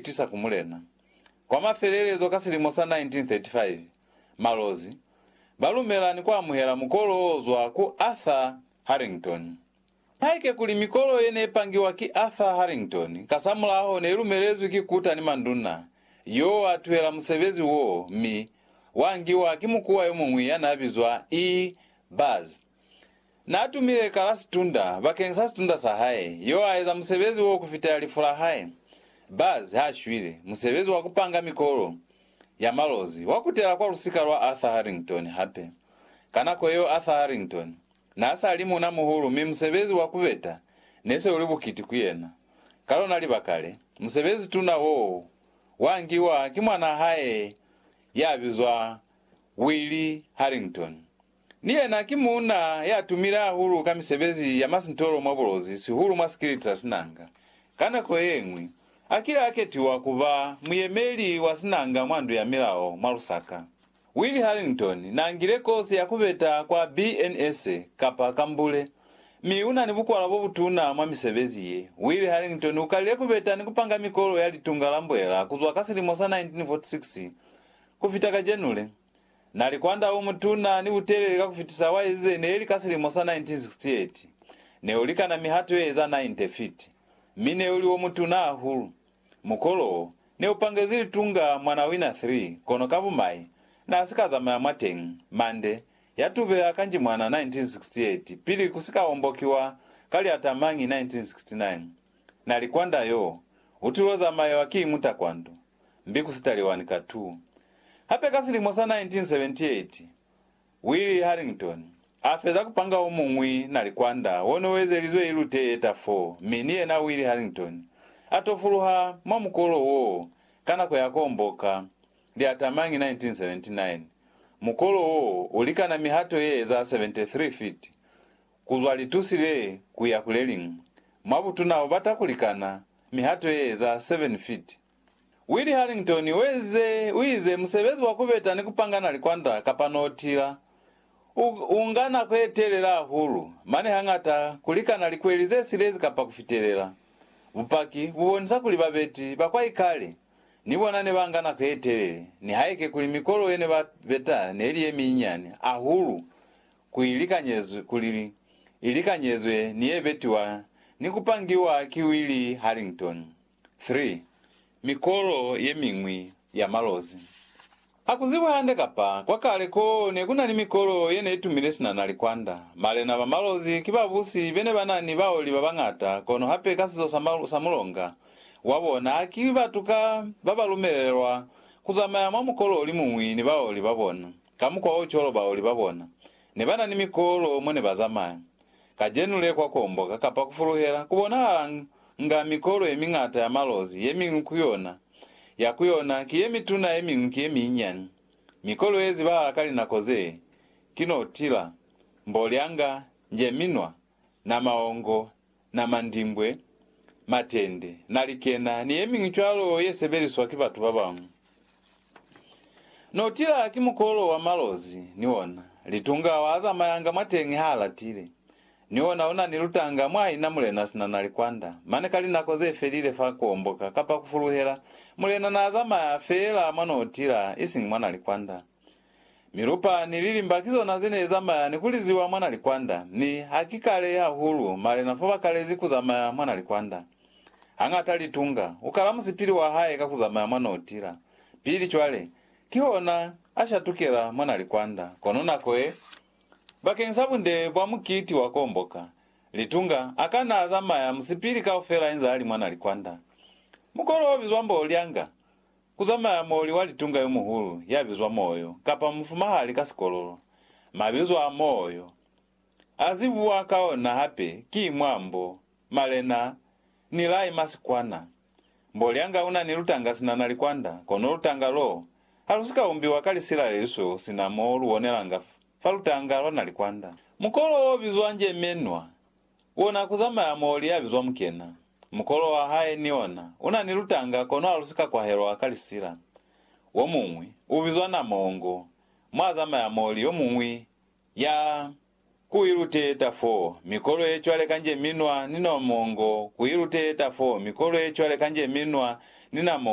tisa ku Mulena. Kwa mafelelezo ka silimo sa 1935, Malozi ba lumela ni ku amuhela mukolo o zwa ku Arthur Harrington. Haike kuli mikolo ye ne pangiwa ki Arthur Harrington kasamulaho ne lumelezwi ki Kuta ni manduna, yo wa tuhela musebezi woo mi wa ngiwa ki mukuwa yo muñwi ya n'a bizwa E. Buzz. Naatumile kala sitund'a bakeng sa sitund'a sa hae, yo aeza musebezi wo kufitela lifu la hae. Buzz ha shwile, musebezi wa kupanga mikolo ya malozi wa kutela kwa lusika lwa Arthur Harrington hape. Ka nako yeo Arthur Harrington naasali muuna muhulu mi musebezi wa kubeta nese uli bukiti ku yena. Ka lona libaka le, musebezi tuna woo wa ngiwa ki mwanaa hae ya bizwa Willie Harrington, Ni yena ki muuna ya tumile hahulu ka misebezi ya masintolo mwa bulozi, sihulu mwa sikilitsa sinanga. Ka nako ye ñwi, a kile a ketiwa ku ba muyemeli wa sinanga mwa Ndu ya Milao mwa Lusaka. Willie Harrington n'a ngile kosi ya ku beta kwa BNS, kapa kambule, mi u na ni bukwala bo butuna mwa misebezi ye. Willie Harrington u kalile ku beta ni ku panga mikolo ya Litunga la Mbuelela ku zwa ka silimo sa 1946 ku fita kajenule. Na li kwand'a umutuna ni utelele ka kufitisa wa ezize neli ka silimo sa 1968. Ne ulikana mihato ye eza 90 fiti, mi ne uli omutuna hahulu. Mukolo wo, ne upangezwi litunga mwa na wina 3, kono ka bumai, na si ka zamaya mwateñi. Mande, ya tubeha kanji mwana 1968, pili ku si ka ombokiwa ka liata mañi 1969. Na li kwanda yo, u til'o zamaewa ki mutakwandu, mbi ku si taliwani ka tu. Hape ka silimo sa 1978, Willie Harrington a feza ku panga o muñwi na li kwanda wo ne u ezelizwe ilute ye ta fo, mi ni yena Willie Harrington a tofuluha mwa mukolo woo ka nako ya komboka li atamañi 1979. Mukolo woo u likana mihato ye eza 73 fiti Ku zwa litusi le ku ya ku le liñwi. Mwa butuna u bata ku likana mihato ye eza 7 feet. Willie Harrington u ezize, u ize, Musebezi wa ku beta ni ku pangana likwanda kapa notila u, u nga nako ye telela hahulu, mane hañata ku likana likweli ze silezi kapa ku fitelela. Bupaki bu bonisa kuli babeti ba kwa ikale ni bona ne ba nga nako ye telele, nihaike kuli mikolo ye ne ba beta ne li ye minyinyani hahulu ku i likanyezwe, kuli i likanyezwe ni ye betiwa ni ku pangiwa ki Willie Harrington. 3, Mikolo ye miñwi ya malozi. Ha ku zibi hande kapa kwa kale ko ne ku na ni mikolo ye ne i tumile sina na likwanda. Malena ba malozi ki babusi be ne ba na ni baoli ba bañata, kono hape ka sizo sa, sa mulonga wa bona, haki batu ka ba ba lumelelwa ku zamaya mwa mukolo o li muñwi ni baoli ba bona. Kamukwaocwalo baoli babona nebanani mikolo mone bazamaya. Kacenu le kwakomboka kapa kufuluhela kubonahalanga mikolo yemiñata ya malozi, yemiñwi kuyona ya kuyona ki yemituna yemiñwi ki yeminyinyani. Mikolo yezibahala ka linako zee ki notila, mbolyanga, njeminwa, namaongo, na mandimbwe, matende, na likena, ni yemiñwi cwalo ye sebeliswa ki batu babañwi. No tila ki mukolo wa malozi, ni ona. Litunga wa zamayanga mwateñi ha latile. Ni ona una ni lutanga mwa ina mulena sina na likwanda. Mane ka linako ze felile fa kuomboka kapa kufuluhela, mulena na zamaya feela mwa no tila, isiñi mwa na likwanda. Milupa ni lilimba ki zona ze ne zamaya ni ku liziwa mwa na likwanda, mi ha ki kale hahulu malena fa ba kalezi ku zamaya mwa na likwanda. Hañata Litunga u kala musipili wa hae ka ku zamaya mwa no tila pili cwale, kihona a shatukela mwa na likwanda. Kono nako ye, bakeng sa bunde bwa mukiti wa komboka, Litunga a ka na zamaya musipili kaufela inza ali mwa na likwanda. Mukolo o bizwa mbo Lyanga Ku zamaya moli wa litunga yo muhulu ya bizwa Moyo, kapa mufumahali ka sikololo. Mabizo a Moyo, a zibuwa ka ona hape ki mwa mbo, malena, ni lai masikwana. Mbolyanga una ni lutanga sina na likwanda, kono lutanga lo ha lu si ka umbiwa ka lisila le lisweu sina mo lu bonelanga fa lutanga lwa na likwanda. Mukolo o bizwa njemenwa, Una kuzamaya mo li ya bizwa mukena. Mukolo wa hae ni ona una ni lutanga kono ha lu si ka kwahelwa ka lisila. Womuñwi u bizwa Namongo, mo a zamaya mo li yomuñwi ya. Ku iluteta fo mikolo ye cwale kanje minwa ni Nomongo, ku iluteta fo mikolo ye cwale kanje minwa ni Namongo.